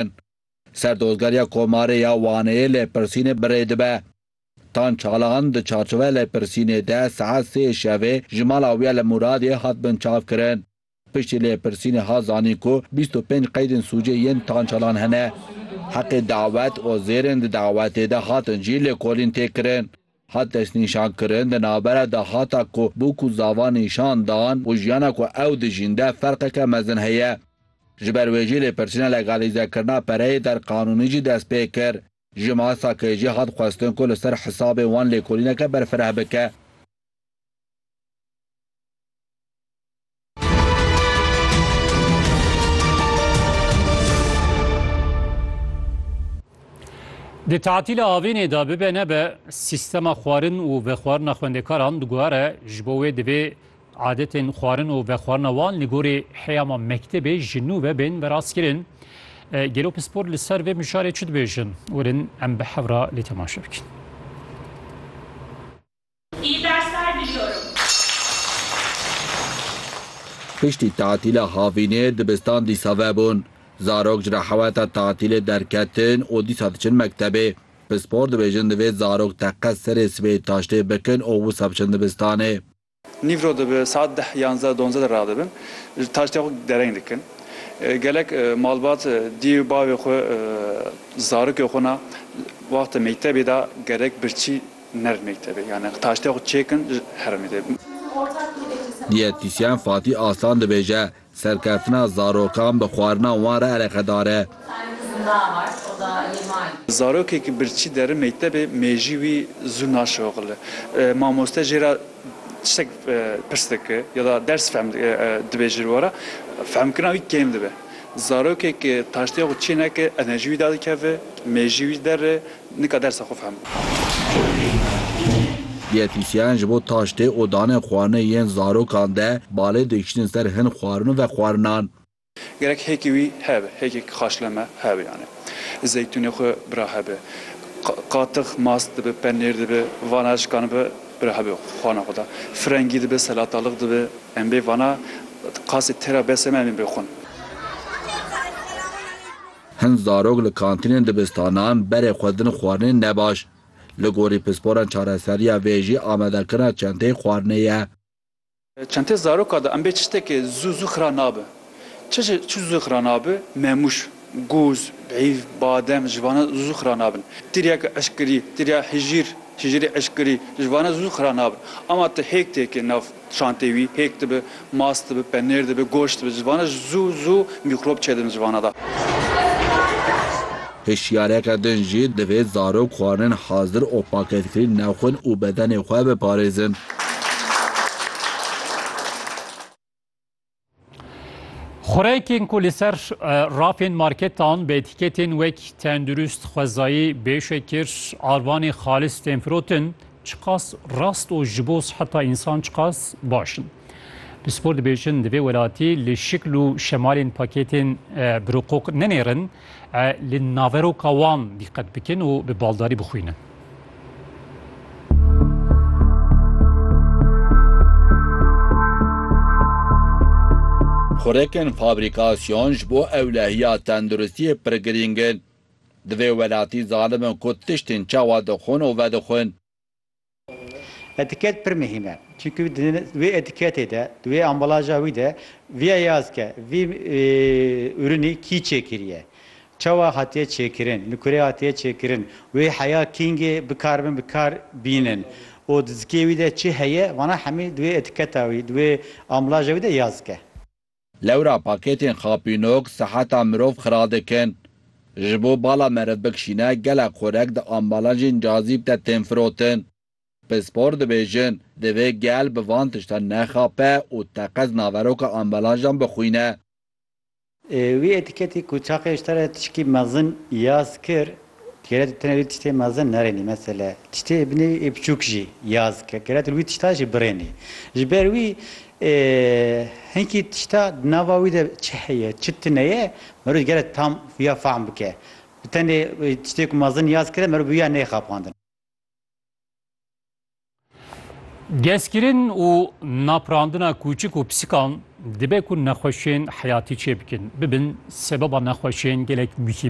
kirin. Serdozgeriya Komarê ya Waneyê lêpirsînê birê dibe. Tan Çalahan di çarçoveya lêpirsînê de saet sê şevê ji mala wî ya li Mûradiyê hat binçavkirin. Piştî lêpirsînê hat zanîn ku bîst û pênc qeydên sûcê yên Tan Çalahan hene. Heqê dawet û zêrên di dawetê de hatin jî lêkolîn tê kirin. Hat destnîşankirin di navbera de hata ku bo ku zava nîşan dan û jiyana ku ew dijîn de ferqeke mezin heye. Ji ber wê jî lêpirsîna legalîzekirina pereyê der qanûnî jî dest pê kir. Ji MASAK'ê jî hat xwestin ku li ser hisabê wan lêkolîneke berfireh bike. Di tatîla avênê de bibe nebe sîstema xwarin û vexwarina xwendekaran diguhere ji bo wê divê adetên xwarin û vexwarina wan li gorî heyama mektebê ji nû ve bên veraskirin. Gelo pispor li ser vê mijarê çi dibêjin? Werin em bi hevra lê temaşe bikin. İyi dersler diliyorum. Piştî tatîla havînê dibistan dîsa vebûn. Zarok ji rehaweta tatîlê derketin û dîsa diçin mektebê. Pispor dibêjin divê zarok teqe serê sibê taştê bikin û wisa biçin dibistanê. Nîvro dibe saet deh, yanzdeh, dondze de radibin. Ji taştê xwe dereng dikin. Gelek malbat diyê û bavê xwe zarokê xwe na wexta mektebê da gerek birçî. Nerd mektebê yani taştê xwe çêkin ji heremê tê. Diyetîsyen Fatî Aslan dibêje, Serkeftina zarokan bi xwarina wan re eleqedar e. Zarokê ku birçî derin mektebê mêjî wî zû naşoxile. Mamoste jê re tiştek pirs dike ya da ders fehm dibe ji we re fehmkirina wî kêm dibe. Zarokê ku taştê xwe çê neke enerjî wî derdikeve, mêjî wî der e. Nika dersa xwe fehm bû. Dîyetisyen ji bo taştê û danê xwarinê yên zarokan de balê dikişînin ser hin xwarin û vexwarinan. Gerek hêkî wî hebe, hêkek xaşleme hebe yanî zeytûnê xwe bira hebe, qatix mast dibe, penêr dibe, vana şikan be bira hebe xwarina xwe de. Frengî dibe, selatalix dibe. Em bê vana qasê têra besê me em ê bixwin. Hin zarok li kantînên dibistanan berê xwe din xwarinê ne baş. Li gorî pisporan çareseriya vê jî amadekirina çenteyê xwarinê ye. Çenteyê zaroka de em bê çi ştekê zû zû xira nabe. Çi jî çi zû xira nabe, memûş, gûz, bîv, badem ji vane zû zû xira nabin. Tiryek eşkirî, tirya hijîr, hijîrê eşkirî ji vane zû zû xira nabin. Ama tu hêk têkê nav. Çantê wî pêk dibe, mas dibe, penêr dibe, goşt dibe civana ji zû zû mîkrob çêdin li civana de. Hişyareke din jî divê zarok xwarin hazir û pakêtkirî nexwin û bedenê xwe biparêzin. Xureyekên ku li ser rafên marketan bi etiketên wek tendurist, xwezayî, bêşekir, arvanê xalis tên firotin, çiqas rast û ji bo siheta însan çiqas baş in. Pispor dibêjin di vê welatî li şikl û şemalên pakêtên biroqoq nenêrin, Li naveroka wan dîqet bikin û bi baldarî bixwînin. Xurekên fabrîkasyon ji bo ewlehiya tenduristiyê pir girîng in. Divê welatî zanimin ku tiştên çawa dixwin û vedixwin. Etiket pir muhîm e. Çimkî di wê etiketê de, di wê ambalaja wî de vîya yaz ke vî ürünî kî çêkiriye, çawa hatiye çêkirin, li kurê hatiye çêkirin, wê heya kîngê bikaribin bi kar bînin û di zikê wî de çi heye, vana hemî di wê etiketa wî, di wê ambalaja wî de yaz ke. Lewra pakêtên xapînok seheta mirov xira dikin. Ji bo bala meriv bikşîne gelek xorek di ambalajên cazîb de tên firotin. Pispor dibêjin, divê gel bi van tiştan nexape û teqez naveroka ambalajan bixwîne. Wî etiketî ku çaxê ji te re tişkî mezin yaz kir, Gere tu tenê wî tiştê mezin nerênî mesele tiştê binê ê biçûk jî ya zikre gere tu wî tişta jî birênî. Ji ber wî hinkî tişta di nava wî de çi heye çi tune ye meroj gere tam wîya fahm bike. Bi tenê tiştê ku mezin ya zikre meroj bi wî ya nêxapandin. Gezkirin û naprandina kûçik û pisikan dibe ku nexweşiyên heyatî çêbikin bibin sebeba nexweşiyên gelek muhîm.